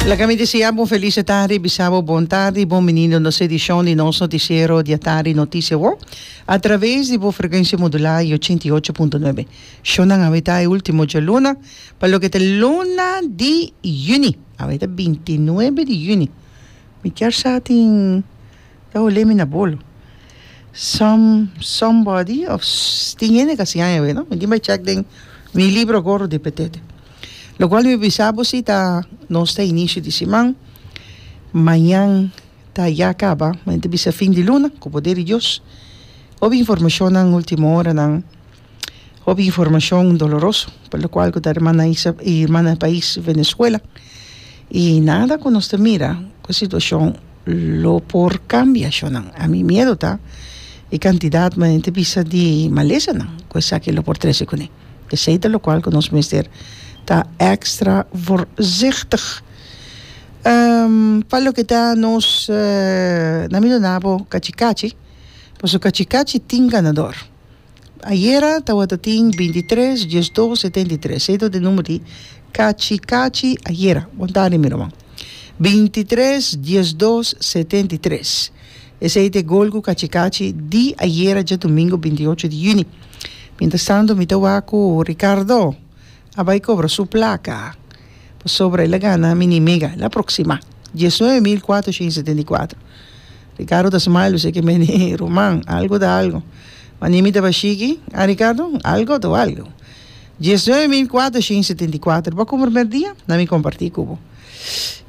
Laga mi desea bo un felis e tardi, bisa bo bon tardi i bon binido nos edishon di nos notisiero di e tardi Noticia World a traves di bo frekuensia modulá i ochenta i ocho punto nuebe. Shó nan awe ta e ultimo djaluna pa loke ta e luna di yüni. Awe ta binti nuebe di yüni. Mi kier sa tin ta olé mi na bolo. Some somebody of tin hende ka siña mi awe no. Mi tin bai chèk den mi libro Gorro di Petete. Locual mi bisa bo si ta nos ta inicio di siman, mañan ta ya caba, mañan ta bisa fin di luna cu poder di Dios. Hopi informacionnan ultimo horanan, hopi informacion doloroso pa locual cu ta hermana Isa y hermana pais Venezuela y nada cu nos ta mira cu e situacion lo por cambia ashonan. A mi miedo ta e cantidad mañan ta bisa di malesanan cu esaki lo por trece cune. Esei ta lokual ku nos mester ta èkstra voorzichtig. Pa loke ta nos naminonabo kachikachi, paso kachikachi tin ganador. Ayera tabata tin binti tres, diesdos, setenta i tres. Eseitu e number di kachikachi ayera. Wantari mi ruman. Binti tres, diesdos, setenta i tres. Esei ta e gol ku Kachi-Kachi di ayera djadumingu binti ocho di yüni. Mientras tanto mi ta wak ku Ricardo a bai kobra su plaka pasobra el a gana mi ni mega, el a proksima. Dies nuebe mil kuatroshent i setenta i kuatro. Ricardo ta smile kusé ke mende ruman, algu ta algu. Wanier mi tabata shiki, ah Ricardo, algu ta algu. Dies nuebe mil kuatroshent i setenta i kuatro, bo ku primer dia? Na mi kompartí ku bo.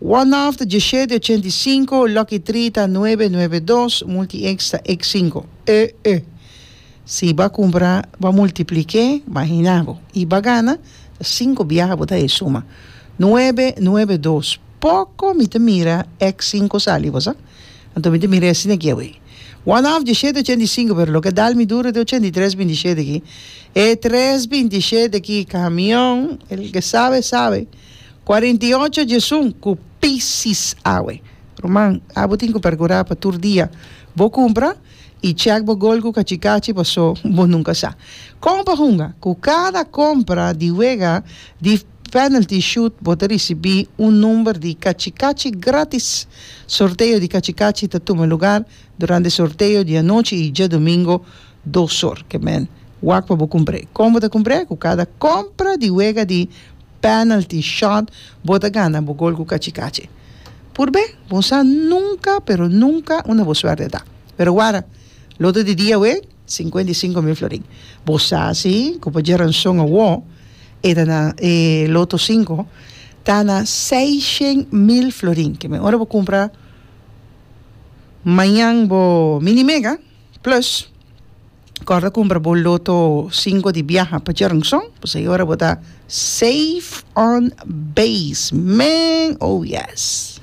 Wanaft dje shete ochenta i sinku, Lucky Tree ta nuebe nuebe dos, Multi X ta X sinku. E e. Si ba kumpra, ba multipliké, mahina bo, i ba gana, ta sinku biaha bo ta e suma. Nuebe nuebe dos. Poko mi ta mira X sinku sali, bo sa? Anto mi ta mira asina aki awe. Wanaft dje shete ochenta i sinku, pero loke dal mi duru te ochenta i tres binti shete aki. E tres binti shete aki, kamion, el ke sabe sabe. Cuarenta y ocho jesun cu pisis awe. Ruman, abo tin cu percura pa tur dia bo cumpra y check bo golgu cachi cachi paso bo nunca sa con pa hunga cu cada compra di wega di penalty shoot bo ta ricibi un number di cachi cachi gratis. Sorteo di cachi cachi ta tuma lugar durante sorteo di anochi y djadomingo dos or. Kemen wak pa bo cumpre. Con bo ta cumpre? Cu cada compra di wega di. Penalty shot bo ta gana bo gol ku kachi kachi purbe bon sa nunka pero nunka unda bo suerte ta pero wara lote di dia awé sinkuenta i sinku mil florin bo sa si ku pa dje ranson awo e ta na e loto sinku ta na seishen mil florin ke men ora bo kumpra mañan bo mini mega. Plus, kòrda kumpra bo loto sinku di biaha pa Jernsong, pasobra e ora bo ta safe on base, men! Oh yes!